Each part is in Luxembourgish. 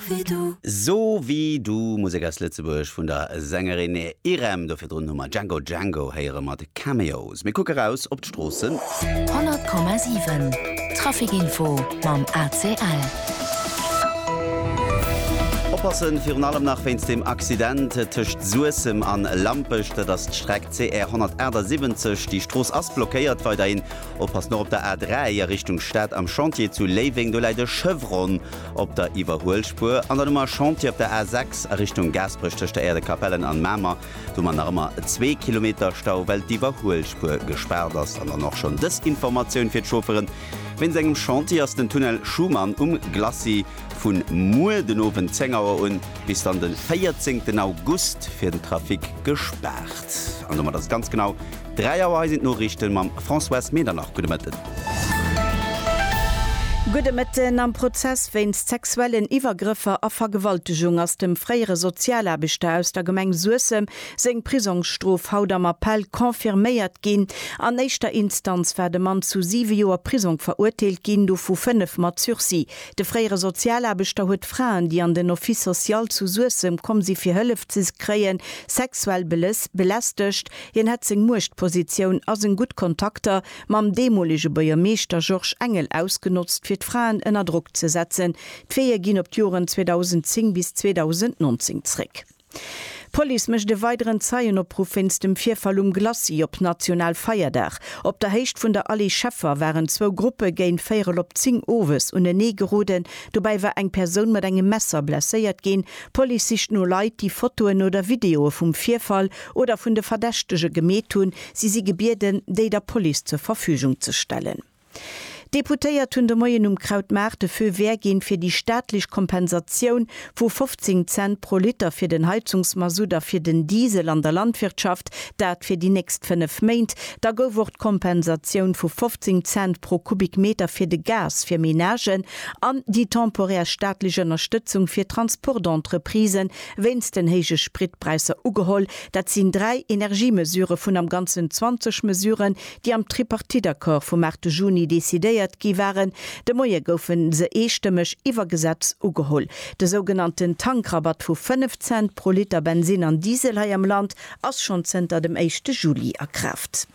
wéi du. So wéi du, Musek aus Lëtzebuerg vun der Sängerin Irem. Do virdrun hu mer Django Django héiere mat Cameos. Mir kucke raus op d'Stroossen. 100,7 Trafikinfo mam ACL. Oppassen, virun allem nach wéinst dem Accident tëscht Suessem an Lampech. Dat ass d'Streck CR 178. Déi Strooss ass blockéiert weiderhin. Oppasst nach op der A3 a Richtung Stad am Chantier zu Léiweng. Do läit e Chevron Op der Iwwerhuelspuer an dann um a Chantier op der A 6 a Richtung Gaasperech tëscht der Aire de Capellen an Mamer, do man nach ëmmer zwee Kilometer Stau well d'Iwwerhuelspuer gespaart ass. An dann och schonn dës Informatioun fir d'Chaufferen, Wéinst engem Chantier ass den Tunnel Schuman um Glacis vun muer den Owend 10 Auer un bis dann den 14 August fir den Trafic gespaart. An domat ass et ganz genau. 3 Auer, hei sinn d'Noriichten mam Françoise Medernach. Gudde Mëtten. Gudde Mëtten. Am Prozess wéinst sexuellen Iwwergrëffer a Vergewaltegung ass dem fréiere Sozialaarbechter aus der Gemeng Suessem seng Prisongsstrof haut am Appell confirméiert ginn. An éischter Instanz war de Mann zu siwe Joer Prisong verurteelt ginn, dovu fënnef mat Sursis. De fréiere Sozialaarbechter huet Fraen, déi an den Office social zu Suessem komm si fir Hëllef ze kréien, sexuell belästegt. Hien hätt seng Muechtpositioun a seng gutt Kontakter mam deemolege Buergermeeschter Georges Engel ausgenotzt, fir d'Fraen ënner Drock ze setzen. D'Veeë ginn op d'Joren 2010 bis 2019 zréck. D'Police mécht e weideren Zeienopruff wéinst dem Virfall um Glacis op National Feierdag. Op der Héicht vun der Allée Scheffer waren zwou Gruppe géint véierel op zéng owes unenee geroden. Dobäi war eng Persoun mat engem Messer blesséiert ginn. D'Police sicht no Leit, déi Fotoen oder Videoe vum Virfall oder vun de Verdächtege gemeet hunn, si si gebieden, déi der Police zur Verfügung ze stellen. D'Deputéiert hunn de Moien um Krautmaart de Feu vert ginn, fir déi staatlech Kompensatioun vu 15 Cent pro Liter fir den Heizungsmasutt a fir den Diesel an der Landwirtschaft, dat fir déi nächst fënnef Méint. Da gouf och d'Kompensatioun vu 15 Cent pro Kubikmeter fir de Gas fir Menagen an déi temporär staatlech Ënnerstëtzung fir Transportentreprisen Wéinst den héije Spritpräisser ugeholl, dat sinn dräi Energiemesure vun am Ganzen 20 Mesuren, déi am Tripartite-Accord vum 8 Juni decidéiert gi waren. De Moie goufe se eestëmmeg iwwer Gesetz ugeholl. De sougenannten Tankrabatt vu 5 Cent pro Liter Bensinn an Diesel hei am Land ass schonn zënter dem éischte Juli a Kraaft.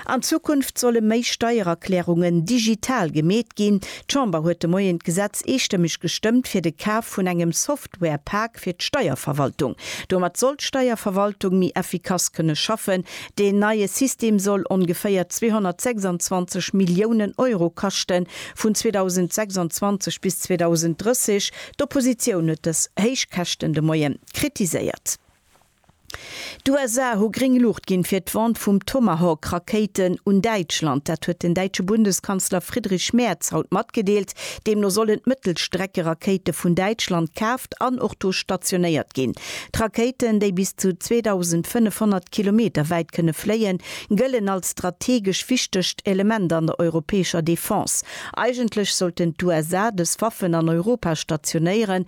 An Zukunft solle méi Steiererklärungen digital gemeet ginn. D'Chamber huet de Moien d'Gesetz eestëmmeg gestëmmt fir de Kaf vun engem Software-Pak fir d'Steierverwaltung. Domat soll d'Steierverwaltung méi effikass kënne schaffen. Deen neie System soll ongeféier 226 Milliounen Euro kaschten, vun 2026 bis 2030. D'Oppositioun huet dës héich Käschten de Moien kritiséiert. D'USA hu gréng Luucht ginn, fir d'Vente vum Tomahawk-Rakéiten un Däitschland. Dat huet den däitsche Bundeskanzler Friedrich Merz haut matgedeelt. Deemno sollen d'Mëttelstreckerakéite vun Däitschland kaaft an och do stationéiert ginn. D'Rakéiten, déi bis zu 2.500 Kilometer wäit kënne fléien, gëllen als strategesch wichtegt Element an der europäescher Defense. Eigentlech sollten d'USA dës Waffen an Europa stationéieren,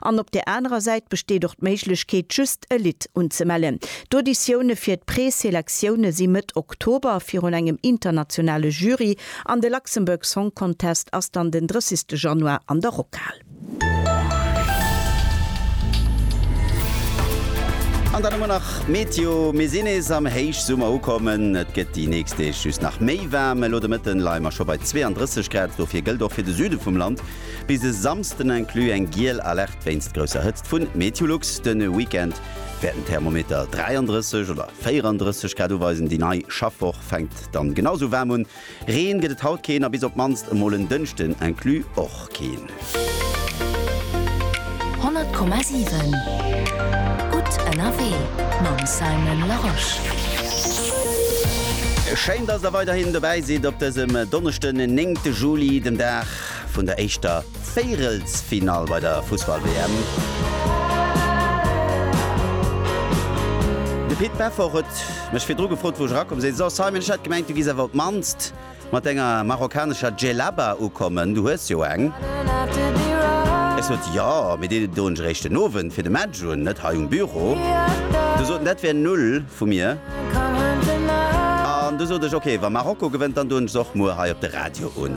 An op där anerer Säit besteet och d'Méiglechkeet, just e Lidd unzemellen. D'Auditioune fir d'Pre-Selektioune si Mëtt Oktober virun engem internationale Jury an de Luxembourg Song Contest ass dann den 30 Januar an der Rockhal. An dann hu mer nach d'Meteo. Mir sinn nees am Héichsummer ukommen. Et gëtt déi nächst Deeg just nach méi waarm. Elo de Mëtten leie mer scho bei 32 Grad. Dofir gëllt och fir de Süde vum Land, Bis e Samsden inclus eng giel Alerte wéinst grousser Hëtzt vun Meteolux. De Weekend wäert den Thermometer 33 oder 34 Grad uweisen. Déi nei Schaffwoch fänkt dann genau sou waarm un. Reen gëtt et haut keen a bis op d'mannst emol en Dënschden inclus och keen. 100,7 Gutt ënnerwee mam Simon Larosche. Schéin, dass der weiderhin dobäi sidd op dësem Donneschden, den 9 Juli, dem Dag vun der éischter Véirelsfinall bei der Fussball-WM. De Pit Peffer huet mech virdru gefrot, wou ech erakomm sinn. So, Simon, ech hat gemengt, du giss awer op d'mannst mat denger marokkanescher Djellaba ukommen. Du hues jo eng. Ech sot, Jo, mee déi doen ech eréischt den Owend fir de Match un, net hei um Büro. Du sot en, dat wär null vu mir. An du sot ech, Ok, wa Marokko gewënnt, dann doen ech se och muer hei op de Radio un.